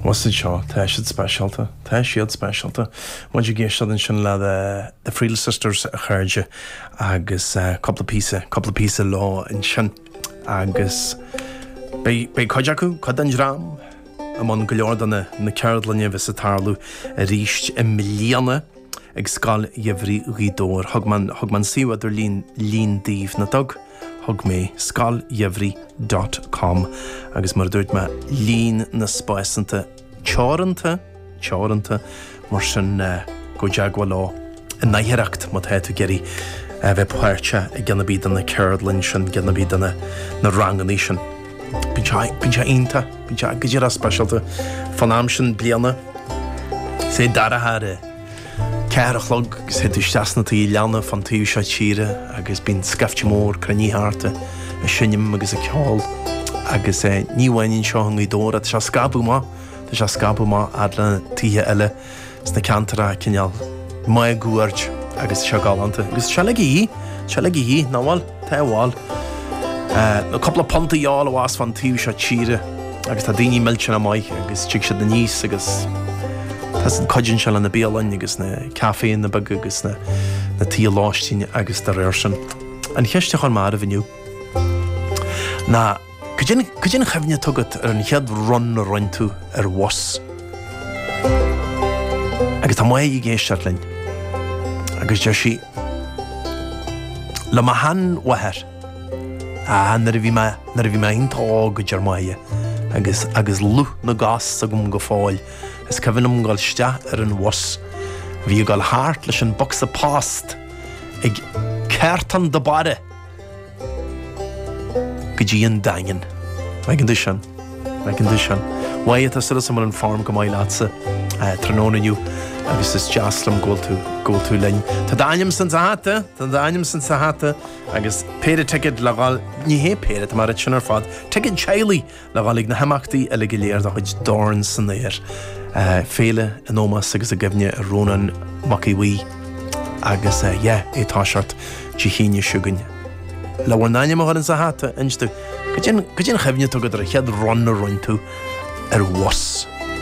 Bhus iad seo. Tá siad speisialta. Tá siad speisialta. Muid ag éisteacht ansin le The Friel Sisters, a chairde, agus cúpla píosa, cúpla píosa leo ansin. Agus beidh, beidh cuid acu, cuid den dream, i mbun go leor de na, na ceardlainne a bheas ag tarlú arís i mbliana ag Scoil Gheimhridh Ghaoth Dobhair. Thug mé an, thug mé an suíomh idirlín daoibh, nach dtug? Thug mé Scoil Gheimhridh dot com agus mar a dúirt mé, líon na spásanta teoranta, teoranta, mar sin gabh i dteagmháil leo in aichearracht má tá tú ag iarraidh a bheith páirteach i gceann ar bith de na ceardlainn sin, gceann ar bith de na ranganna sin. Bíonn sé, bíonn sé iontach, bíonn sé go díreach speisialta fán am sin bliana, is é dorcha ar a. Ceathair a chlog agus théid tú isteach sna tithe leanna fán taobh seo tíre agus bíonn scaifte mór cruinnithe thart ag seinm agus ag ceol agus ní hamháin anseo i nGaoth Dobhair, tá sé scabtha amach, tá sé scabtha amach fhad le tithe eile sna ceantracha cineál máguaird agus tá sé galánta agus tá sé le gí, tá sé le gí, ná bhfuil? Teagmháil, nó cúpla punt a fháil abhus fán taobh seo tíre, agus tá daoine millteanach maith, agus tig siad aníos, agus tá siad, cuidíonn sé le na bialainn, agus na caiféanna beaga, agus na tithe lóistín, agus dá réir sin. An cheist a chuir mé oraibh inniu ná. Cad é an chuimhne atá agat ar an chéad run a rinne tú ar bhus? Agus tá Maedhbh ag éisteacht linn agus deir sí, Le mo shean-mháthair. Ah, nuair a bhí mé, nuair a bhí mé iontach óg, a deir Maedhbh, agus, agus lúth na gcos agam go fóill, is cuimhin liom dhul isteach ar an bhus a bhí ag dhul thart leis an bocsa post ag ceartán do báire! go dtí an Daingean. Maidin duit ann. Maidin duit ann. a Mhaedhbh, tá súil agam go bhfuil an form go maith leatsa tráthnóna inniu agus is deas liom go bhfuil tú, go bhfuil tú linn. Tá d'ainm ins an hata, tá d'ainm ins an hata agus péire ticéad le dhul, ní hé péire, tá mé ag ráit sin ar fad, ticéad teaghlaigh Le dhul chuig na himeachtaí uile go léir de chuid Dorn san Aer Féile in ómós agus i gcuimhne ar Rónán Mac Aodh Bhuí agus yeah é tá seort de shíneadh chugainn le bhur n-ainm a chur ins a hata inis domh cad é an chuimhne atá agat ar an chéad run a rinne tú ar bhus.